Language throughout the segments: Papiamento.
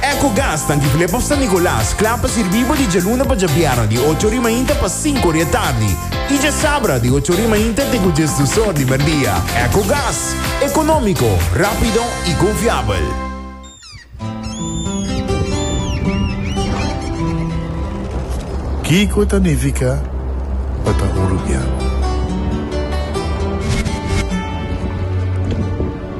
Ecogas ta Antigulé pa San Nicolas, kla pa sirbí bo di djaluna pa djabièrnè di ocho ori mainta pa sinku ori atardi i djasabra di ocho ori mainta te ku djes dusor di merdia. Ecogas, ekonómiko, rápido i konfiabel. Kiko ta nifiká pa ta un rubian?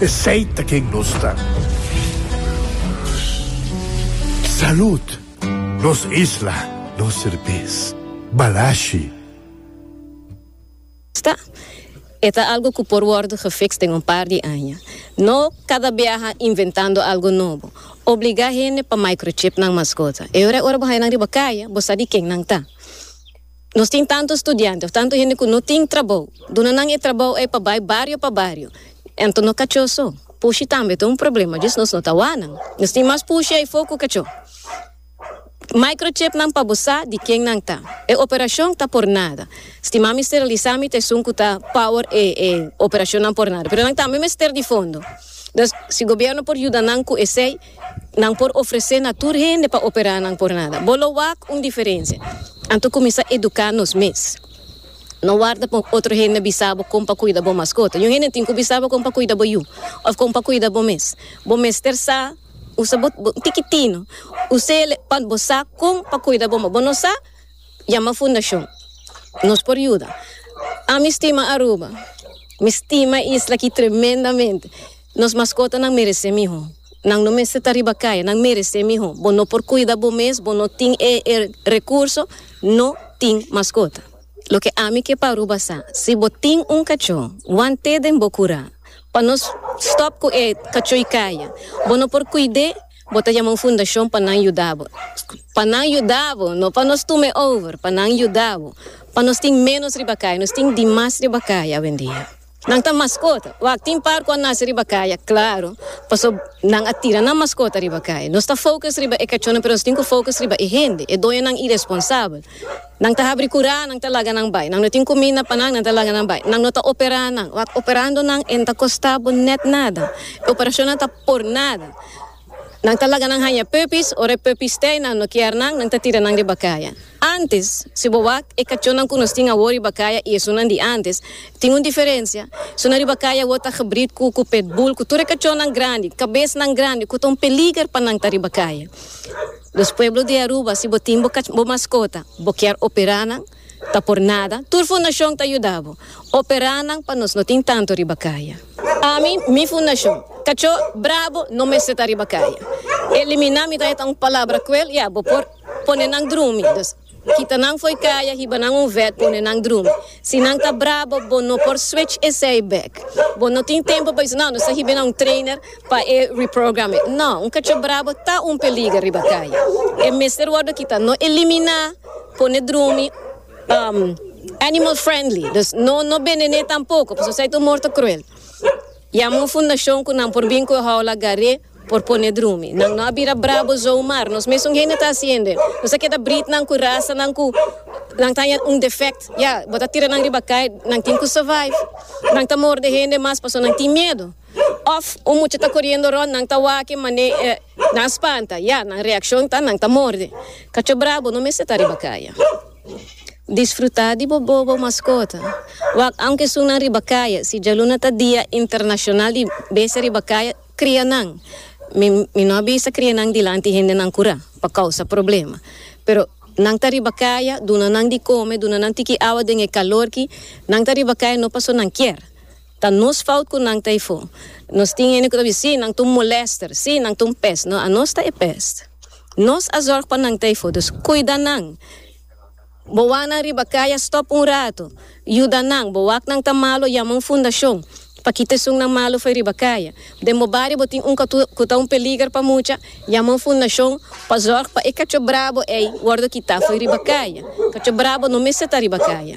Esey ta ken nos ta. Salud! Nos isla, nos serbes. Balashi. Sta. E ta algo cu por wordo gefixt den un par di aña. No cada biaha inventando algo nobo. Obliga hende pa microchip nan mascota. E hora e ora bo haya nan riba caya, bo sa di ken nan ta. Nos tin tantu studiante of tantu hende ku no tin trabou. Duna nan e trabou ei pa bai bario pa bario. Anto no kachó so. Pushi tambe ta un problema, djis nos no ta wak nan. Nos tin mas pushi eifo ku kachó. Microchip nan pa bo sa di ken nan ta. E operashon ta por nada. Stima mi sterilisá mi ta esun ku ta power e e operashonnan por nada. Pero nan tambe mester di fondo. Dòs si gobièrnu por yuda nan ku esei. Nan por ofresé na tur hende pa operá nan pornada. Bo lo wak un diferensia anto kuminsá eduká nos mes. No warda pa otro hende bisa bo kon pa kuida bo maskota. Yon hende tin ku bisa bo kon pa kuida bo yu òf kon pa kuida bo mes. Bo mester sa usa bo bo tikitino usele pa bo sa kon pa kuida bo. Bo no sa? Yama fundashon. Nos por yuda. Ami stima Aruba. Mi stima e isla aki tremendamente. Nos maskotanan meresé mihó. Nan no mester ta riba kaya, nan meresé mihó. Bo no por kuida bo mes, bo no tin e e rekurso, no tin maskota. Loke ami ke pa Aruba sa, si bo tin un kachó, wan té den bo kurá. Pa nos stòp ku e kachó i kaya, bo no por kuid'é, bo ta yama un fundashon pa nan yuda bo. Pa nan yuda bo, no pa nos tume over, pa nan yuda bo. Pa nos tin ménos riba kaya, nos tin dimas riba kaya awendia. Nan ta maskota. Wak tin par ku a nase riba kaya, klaru, paso nan a tira nan maskota riba kaya. Nos ta focus riba e kachónan pero nos tin ku focus riba e hende, e doñonan iresponsabel. Nan ta habri kurá, nan ta laga nan bai. Nan no tin kuminda pa nan, nan ta laga nan bai. Nan no ta operá nan. Wak operando nan e no ta kostá bo nèt nada. E operashonnan ta por nada. Nan ta laga nan haña puppies, ora e puppies te y nan no kier nan, nan ta tira nan riba caya. Antes, si bo wak e cachonnan cu nos tin awor riba caya y esunnan di antes, tin un diferencia. Esunnan riba caya awor ta gebrid cu cu pit bull, cu tur e cachonnan grandi, cabesnan grandi, cu ta un peliger pa nan ta riba caya. Los pueblo di Aruba, si bo tin bo cach, bo mascota, bo kier opera nan, Ta por nada, tur fundashon ta yuda bo. Operá nan pa nos no tin tantu riba kaya. Ami, mi fundashon, Kachó Brabo no mester ta riba kaya. Eliminá mi ta heta un palabra kruel, ya, bo por pone nan drumi. Dus, kita nan fo'i kaya, hiba nan un vèt, pone nan drumi. Si nan ta brabo, bo no por switch esei bèk. Bo no tin tempu pa bisa, No, nos ta hiba na un trainer. Pa e reprograme. No, un kachop brabo ta un peliger riba kaya. E mester wordo kita, no eliminá, pone drumi um animal friendly, dus no no benené tampoko, pasobra esei ta un morto cruel. Yama un fundashon ku nan por bin ku e houla gar'é por pone drumi. Nan no a bira brabo zon mar, nos mesun hende ta hasiende. Nos a keda britnan ku rasanan ku nan ta haña un defect. Ya, bo ta tira nan riba kaya, nan tin ku survive. Nan ta morde hende mas pasobra nan tin miedu. Òf un mucha ta koriendo rònt, nan ta wak-e man'é nan spanta. Ya, nan reakshon ta nan ta morde. Kacho bra, bo no mester ta riba kaya. Disfrutá di bo bobo maskota. Wak aunke esun nan riba kaya. Si djaluna ta Dia Internashonal di Besti Riba Kaya, kria nan. Mi mi no a bisa kria nan dilanti hendenan kurá pa kousa problema. Pero nan ta riba kaya, duna nan di kome, duna nan tiki awa den e kalorki. Nan ta riba kaya no paso nan kier. Ta nos fout cu nan ta e fo. Nos tin hende cu ta bisti, si, nan ta un molester, si, nan ta un pest. No, anos ta e pest. Nos a zorg pa nan ta e fo, dus cuida nan. Bo wak nan riba cay a stop un rato, yuda nan. Bo wak nan ta malo, yama un fundacion pa kita esunnan malo fo'i riba cay. Den bo bario bo tin un catu cu ta un peliger pa mucha, yama un fundacion pa zorg pa e cacho brabo ey wordo kita fo'i riba cay. Cacho brabo no mester ta riba cay.